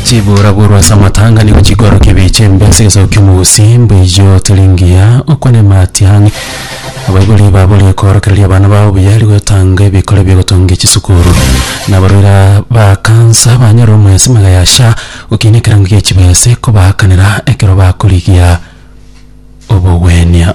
chibura buru ase amatanga nigo chikorokia ebiche embe ase egesaku ki'omogusi mbuya otari ngiya okwane matiang' abaibori baboria koorokereria abana babo buya eri gotanga ebikore bia gotongia chisukuru na abarwaire ba kansa banyore omwesi magega ya sha gokina ekerango gie chibese kobaakanera ekero bakorigia obogwenia.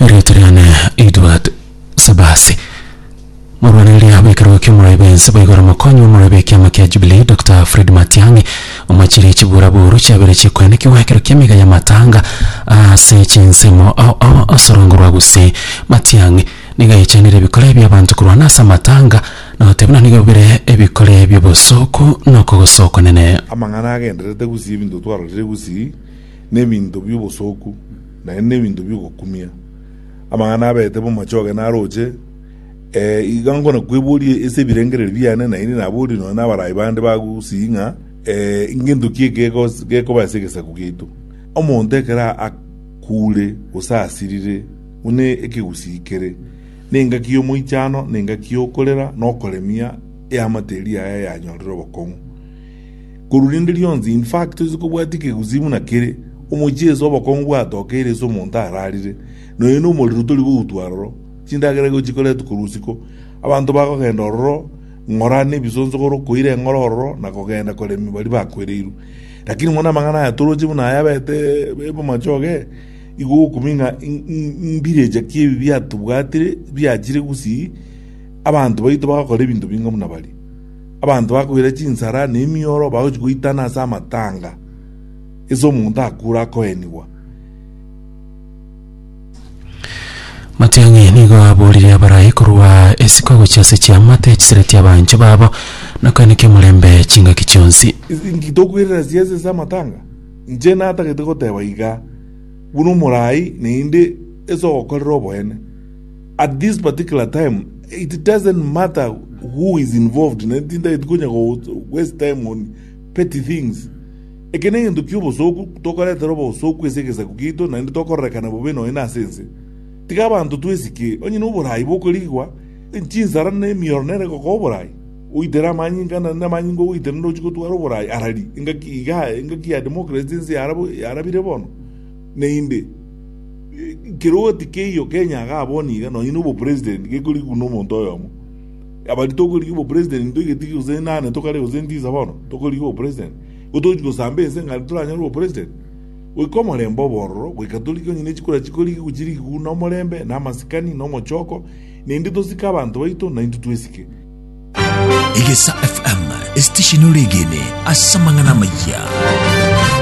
Erioto riane Edward Sabasi. Morwaneiri abo ekerogo ki'omoroio b'ense baigoro mokonyi b'omoroio b'ekiama kia Jubilee Dr. Fred Matiang'i omochirie chibura boru chiabere chikoenekiwa ekero ki'emega y'amatanga ase chinsemo ao ao ase orongo rwa Gusii. Matiang'i nigo aichenire ebikore bi'abanto korwana ase amatanga na goteba buna nigo bire ebikore bi'obosooku na okogosa okonene. Amang'ana agendererete Gusii Ebinto twarorire Gusii. nebinto bi'obosooku, naende nebinto bi'ogokumia. Amang'ana abeete b'omochoge naroche, ee, iga nkonakweboria ase ebirengererio biane, na inde naborie nonya n'abarai bande ba gusii ng'a, ee, ngento ki ekego gekoba ase egesaku giaito? Omonto ekero akuure gose asirire, buna ekegusii kere, nengaki y'omoichano, nengaki y'okorera, na okoremia eamate eria yaye yanyorire obokong'u. Korwa rinde rionsi, in fact, toise kobwatia ekegusii buna kere, omochie ase obokong'u bwatokeire ase omonto ararire, na oyo nomorero tori goutwa aroro, chindagera igo chikoretwa korwa isiko. Abanto bagogenda ororo ng'ora nebisonsogoro, koira eng'ora ororo, na kogenda koremia baria bakwereirwe. Lakini mono amang'ana aya toroche buna aya abete b'amachoge, igo okomanya ng'a in- in- invillager ki ebi biatobwatire, biachire gusii, abanto baito bagokora ebinto binga buna baria. Abanto bakoira chinsara na emioro bagochia goitana ase amatanga, gese omonto akure akoenigwa. Matiang'i nigo aboorire abarai korwa isiko gochia ase chiamate chisiretie abanchwa babo, na koeneka omorembe chingaki chionsi. Inki tokoirera chiazi ase amatanga? Inche natagete goteba iga, buna omorai, naende ase ogokorera oboene. At this particular time it doesn't matter who is involved ne tintageti konya go waste time on petty things. Eke negento kia obosoku, tokoretera obosoku ase egesaku kiaito naende tokororekana bobe nonya na ase ense. Tiga abanto twesike, onye na oboraai bw'okorigigwa, chinsara na emioro nere egokoa oboraai. Oitere amanyinga na naende amanyinga ogoitera nere ochia gotwara oboraai arari. Engaki igaa, engaki ya democracy ense yarabire bono. Naende, kerwoti keiyo Kenya iga abwo niga nonye na obopresident gekorigwa nomonto oyomo. Abari tokorigia obopresident toigeti gose nane tokare gose ntisa bono, tokorigia obopresident. Igo togochi gosamba ense ng'a aria toranyore obopresident. Goika omorembe obe ororo, goika torigie onye ne chikura chikorigigwa chirigigwe na omorembe, na amasikani, na omochoko, naende tosike abanto baito na intwe twesike. Egesa FM, esitesheni ore egene ase amang'ana amayia.